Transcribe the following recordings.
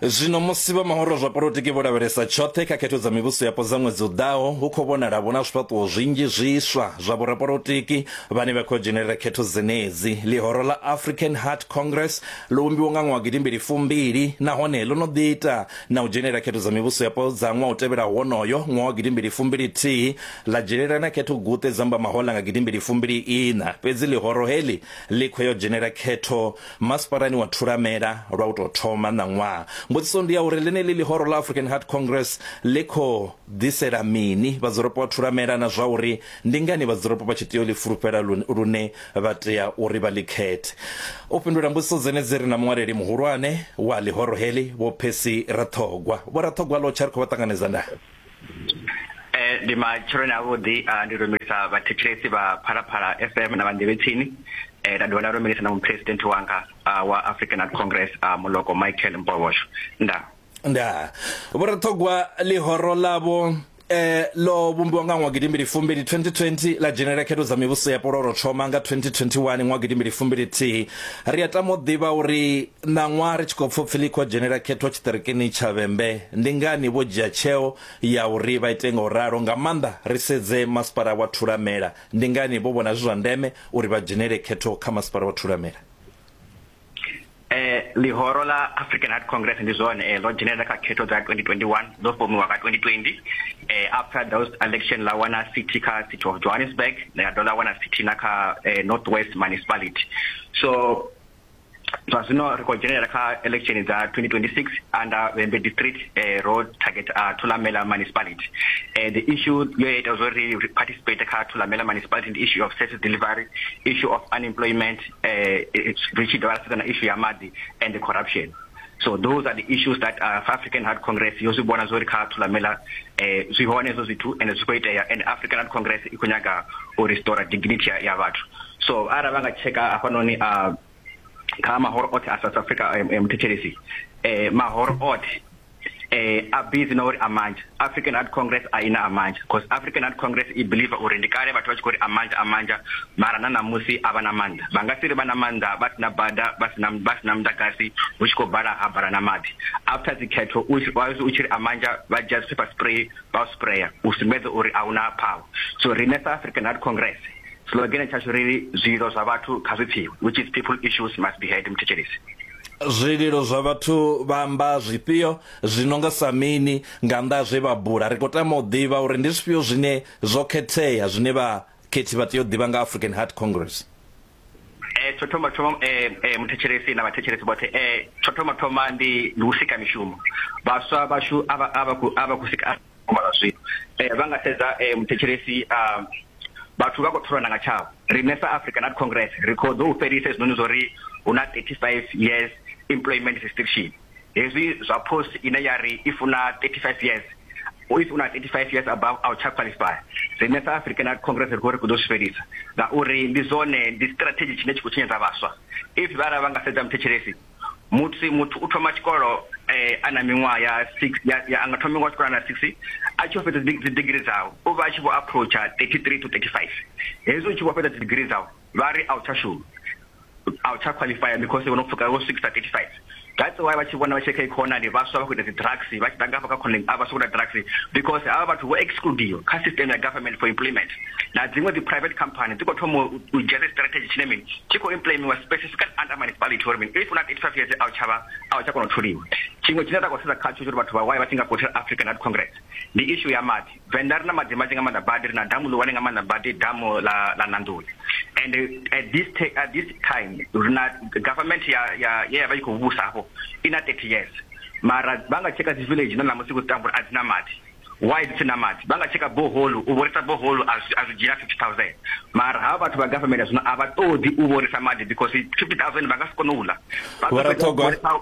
Zwino musi vha mahoro zwa polotiki vho lavhelesa tshoṱhe kha khetho dza mivhuso yapo dza ṅwedzi u ḓaho, hu khou vhonala vhu na zwifhaṱuwo zwinzhi zwiswa zwa vhorapolotiki vhane vha khou dzhenelela khetho dzenedzi. Ḽihoro ḽa African Heart Congress ḽo vhumbiwa nga ṅwaha gidi mbili fumbili nahone ḽo no ḓi ita na u dzhenelela khetho dza mivhuso yapo dza ṅwaha u tevhelaho wonoyo, ṅwaha wa gidi mbili fumbili thihi, ḽa dzhenelela na khetho guṱe dza mbamahoḽa nga gidi mbili fumbili iṋa. Fhedzi ḽihoro heḽi ḽi khou ya u dzhenelela khetho Masparani wa Thulamela lwa u tou thoma ṋaṅwaha. Mbudziso ndi ya uri ḽeneḽi ḽihoro ḽa African Heart Congress ḽi khou ḓisela mini vhadzulapo vha Thulamela na zwa uri ndi ngani vhadzulapo vha tshi tea u ḽi fulufhela lune vha tea uri vha ḽi khethe. U fhindula mbudziso dzenedzi ri na muṅwaleli muhulwane wa ḽihoro heḽi, Vho Percy Raṱhogwa. Vho Raṱhogwa, ḽo tsha ri khou vha ṱanganedza na. Eh ndi matshiloni a vhuḓi ndi lumelisa vhathetshelesi vha Phalaphala FM na vhanḓevhetsini eh nda dovha nda lumelisa na muphuresidenthe wanga wa African Art Congress muloko Michael Mpovhosho nda nda vho ri ṱhogwa ḽihoro ḽavho eh ḽo vhumbiwa nga ṅwaha gidimbili fumbili 2020 ḽa dzhenela khetho dza mivhuso ya poloro thoma nga 2021 ṅwaha gidimbili fumbili thihi ri a tama u ḓivha uri Ṋaṅwaha ri tshi khou pfa upfi ḽi khou dzhenela khetho tshiṱirikini tsha Vhembe, ndi ngani vho dzhia tsheo ya uri vha ite nga u ralo? Nga maanḓa ri sedze masipala wa Thulamela, ndi ngani vho vhona zwi zwa ndeme uri vha dzhenele khetho kha masipala wa Thulamela? Ee, ḽihoro ḽa African Heart Congress ndi zwone ḽo dzhenelela kha khetho dza 2021 dzo fomiwa nga 2020 after those election ḽa wana sithi kha city of Johannesburg ḽa dovha ḽa wana sithi na kha North West Municipality so zwa zwino ri khou dzhenelela kha election dza 2026 under Vhembe district eh, ro target uh, Thulamela municipality eh, the issue yo ya ita zwori ri participate kha Thulamela municipality ndi issue of service delivery issue of unemployment eh, eh, ri tshi dovha ra sedza na issue ya maḓi and corruption so those are the issues that uh, african heart congress yo zwi vhona zwori kha thulamela eh zwi hone hezwo zwithu and zwi khou itea and african heart congress i khou nyaga u restore dignity ya, ya vhathu so ara vha nga checka hafhanoni a uh, kha mahoro othi a south africa eh, eh, muthetshelesi eh mahoro othi eh a busy na uri a manje African Art Congress a ina amanja because African Art Congress i believer uri ndi kale vhathu vha tshi khou ri amanja amanja mara na ṋamusi a vha na maanḓa vha nga si ri vha na maanḓa vha sina bada vha sina vha sina muḓagasi hu tshi khou bala ha bala na maḓi after dzi khetho u u tshi ri amanja vha dzhia dzi paper spray vha sprayer u sumbedza uri a huna power so riṋe sa African Art Congress slogan tshashu ri zwilo zwa vhathu kha zwi pfiwe which is people issues must be heard mthetshelesi zwililo zwa vhathu vha amba zwifhio Zwi no nga sa mini? Nga nnḓa ha zwe vha bula, ri khou tama u ḓivha uri ndi zwifhio zwine zwo khethea zwine vhakhethi vha tea u ḓivha nga African Heart Congress. Eh, tsho thoma thoma eh, eh, muthetshelesi na vhathetshelesi vhoṱhe eh, tsho thoma thoma ndi ndi u sika mishumo vhaswa vhashu a vha a vha khou a vha khou sika mala zwino eh, vha nga sedza eh, muthetshelesi ah, vhathu vha khou tholana nga tshavho riṋe sa African Art Congress ri khou ḓo u fhelisa hezwinoni zwo ri hu na 35 years employment restriction hezwi zwa post ine ya ri if una 35 years if una 35 years above a u tsha qualify rine south african art congress ri khou ri ku ḓo swifhelisa ngauri ndi zwone ndi strategy tshine tshi khou tshinyedza vhaswa if vha ra vha nga sedza muthetshelesi muthu muthu u thoma tshikolo eh ana miṅwaha ya 6 ya, ya anga thoma miṅwaha tshikolo na 6 a tshi fhedza dzi degree dzawe u vha a tshi vho approacha 33 to 35 hezwi u tshi vho fhedza dzi degree dzawe vha ri a u tsha shuma a u tsha qualify because wono pfuka wo swikisa 35 that's why vha tshi vhona vha tshi kha economy vhaswa vha khou ita dzi drugs vha tshi danga hafha kha khonani a vha swika drugs because havha vhathu vho excludiwa kha system ya government for employment na dziṅwe dzi private company dzi khou thoma u dzhia dzi strategy tshine mini tshi khou implementiwa specifically under municipality uri mini if una 85 years a u tsha vha a u tsha kona u tholiwa tshiṅwe tshine ra khou sedza khatsho uri vhathu vha waye vha tshi nga voter African National Congress ndi issue ya maḓi Venḓa ri na maḓi manzhi nga maanḓa badi ri na damu ḽihulwane nga maanḓa badi damu ḽa ḽa Nandoni and at this at this time ri na government ya ya ye ya vha i khou vhusa hafho i na 30 years mara vha nga tsheka dzi village na ṋamusi ku tambula a dzi na maḓi why dzi si na maḓi vha nga tsheka boholu u vhorisa boholu a zwi dzhia 50000 mara havha vhathu vha government zwino a vha ṱoḓi u vhorisa maḓi because 50000 vha nga si kone u ḽa vha ṱoḓa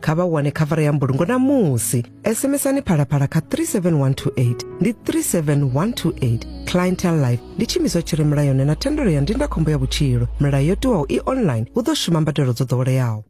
kha vha wane khavara ya mbulungo na musi sms-ani phalaphala kha 37128 ndi 37128 clientel life ndi tshimiswa tshi re mulayoni na thendelo ya ndindakhombo ya vhutshilo milayo yo tiwaho i online hu ḓo shuma mbadelo dzo ḓoweleaho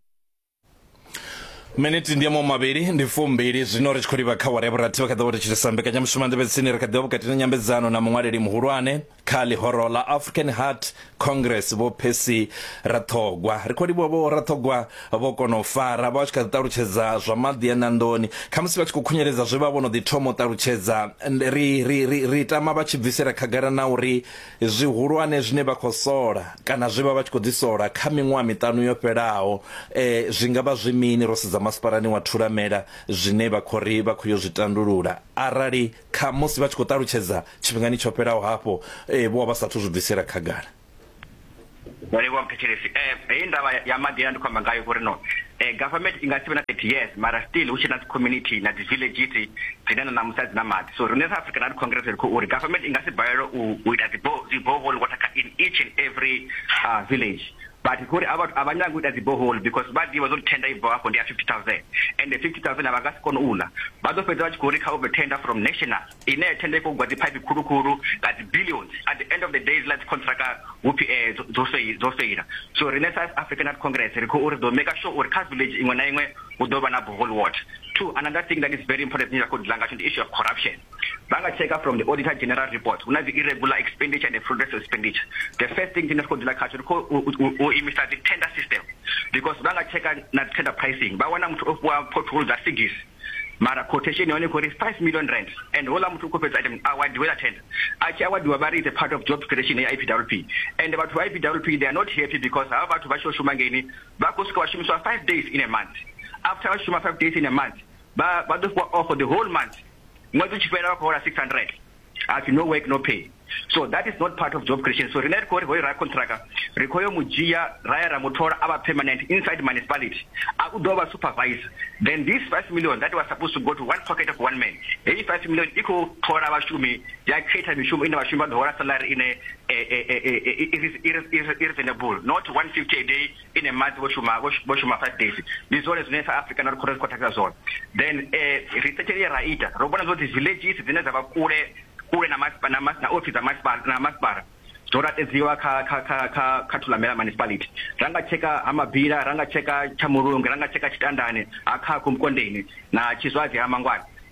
miniti ndi yamo mavhili ndi fumbili zwino ri tshi khou livha kha wara ya vhurathi vha kha ḓa vho ri tshilisa mbekanyamushumo nḓevhetsini ri kha ḓivha vhukati na nyambedzano na muṅwaleli muhulwane Kha ḽihoro ḽa African Heart Congress, Vho Percy Raṱhogwa, ri khou livhuwa Vho Raṱhogwa vho kona u fara, vha vha tshi kha ḓi ṱalutshedza zwa maḓi a ṋanḓoni, khamusi vha tshi khou khunyeledza zwe vha vho no ḓi thoma u ṱalutshedza. Ri, ri, ri, ri tama vha tshi bvisela khagala na uri zwihulwane zwine vha khou sola kana zwe vha vha tshi khou ḓi sola kha miṅwaha miṱanu yo fhelaho zwi nga vha zwi mini ro sedza masipalani wa Thulamela zwine vha khou ri vha khou yo zwi tandulula arali Khamusi vha tshi khou ṱalutshedza tshifhingani tsho fhelaho hafho vho vha vha sa athu zwi bvisela khagala. Ndo livhuwa muthetshelesi. Heyi ndavha ya maḓi ye na ndi khou amba ngayo vho ri no government i nga si vhe na 30 years mara still hu tshe na dzi community na dzi villages dzine na ṋamusi a dzi na maḓi. So riṋe sa Africa na ri congress ri khou ri government i nga si balelwe u ita dzi borehole water kha in each and every village but kuri ava vhathu avanyanga kuita dzi bohol because vha ḓivha zwo tenda ibva hafho ndi ya 50000 and 50000 avha kasi kono ula vha ḓo fhedza vha tshi khou ri kha u tenda from national ine tenda ikho gwa dzi pipe khulu khulu nga dzi billions at the end of the day zwi ḽa dzi contract hu phi eh dzo sei dzo seila so rine sa african art congress ri khou uri ḓo make sure uri kha village iṅwe na iṅwe hu ḓo vha na bohol water two another thing that is very important ni ra khou dila nga tsho ndi issue of corruption vha nga tsheka from the auditor general report hu na dzi irregular expenditure and fraudulent expenditure the first thing tshine ri khou ḓila khatsho ri khou u imisa dzi tender system because vha nga tsheka na dzi tender pricing vha wana muthu o fhiwa pothole dza sigis mara quotation ya hone khou ri 5 million rand and houḽa muthu u khou fhedza item awadiwe la tender a tshi awadiwa vha ri it's a part of job creation ya ipwp and vhathu vha ipwp they are not happy because havha vhathu vha tshi yo shuma ngeini vha khou swika vha shumiswa 5 days in a month after vha shuma 5 days in a month vha vha ḓo fhiwa off for the whole month ṅwedzi u tshi fhela vha khou hola 600 hapfi no work no pay so that is not part of job creation so rine ri khou ri hoyo ra contractor ri khou yo mu dzhia ra ya ra mu thola a vha permanent inside municipality a u ḓo vha supervisor then this 5 million that was supposed to go to one pocket of one man heyi 5 million i khou thola vhashumi ya khetha mishumo ine vhashumi vha ḓo hola salary ine eh, eh, eh, i reasonable not 150 a day in a month vho shuma vho shuma five days ndi zwone zwine sa africa na ri khou ri khou takusa zwone then um research ye ra ita ro vhona zwothi villages dzine dza vha kule kule na masipala na office dza masipala na masipala zwo latedziwa kha kha kha kha kha thulamela municipality ra nga tsheka ha mabila ra nga tsheka tsha mulungu ra nga tsheka tshitandane ha khakhu mukondeni na tshizwadzi ha mangwana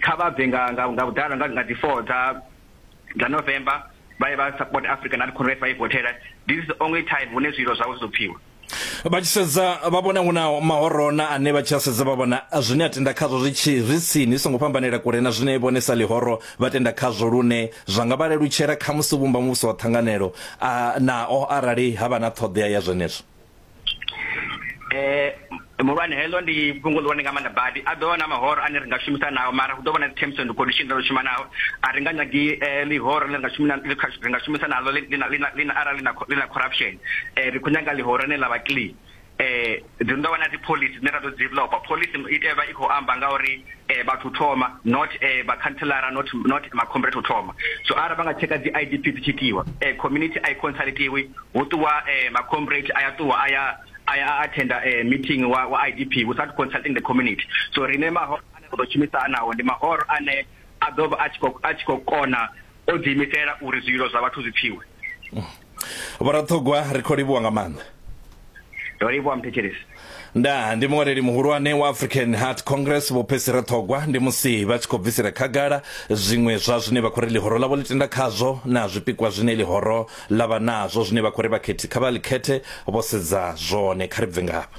Kha vha bve nga nga nga vhuḓalo nga nga dzi 4 dza dza November vha ye vha support Africa National Congress vha i vothela. This is the only time hune zwililo zwavho zwi ḓo pfiwa. Vha tshi sedza vha vhona hu na mahorona ane vha tshi a sedza vha vhona zwine a tenda khazwo zwi tshi zwi tsini zwi songo fhambanela kule na zwine vhone sa ḽihoro vha tenda khazwo lune zwa nga vha lelutshela khamusi u vhumba muvhuso wa ṱhanganelo a nao arali ha vha na ṱhoḓea ya zwenezwo. eh muhulwane heḽo ndi fhungo ḽihulwane nga maanḓa badi a ḓo vha na mahoro ane ri nga shumisa nao mara hu ḓo vha na dzi-terms and condition ro shuma nao a ri nga nyagi eh, ḽihoro ḽi nga shuma ri nga shumisa nalo lina arali ḽi na corruption um ri khou nyaga ḽihoro ane ḽa vha clean eh dzi ndo vha na dzi policy dzine ra ḓo developer policy i tea vha i khou amba nga uri eh vhathu thoma not eh ba councilora not not ma comrade thoma so ara vha nga tsheka dzi IDP dzi tshitiwa eh community i consultiwi hu ṱuwa ma comrade a ya ṱuwa a ya a ya a attender meeting wa wa IDP without consulting the community so rine mahoro ane ra ḓo shumisa anaho ndi mahoro ane a ḓo vha a tshi khou a tshi khou kona o ḓi imisela uri zwilo zwa vhathu zwi pfiwe Vhoraṱhogwa ri khou livhuwa nga maanḓa. Ndo livhuwa mthetshelesi. Ndaa, ndi muṅwaleli muhulwane wa African Heart Congress Vho Percy Rathogwa ndi musi vha tshi khou bvisela khagala zwiṅwe zwa zwine vha khou ri ḽihoro ḽavho ḽi tenda khazwo na zwipikwa zwine ḽihoro ḽa vha nazwo zwine vha khou ri vhakhethi kha vha ḽi khethe vho sedza zwone. Kha ri bve ngafha.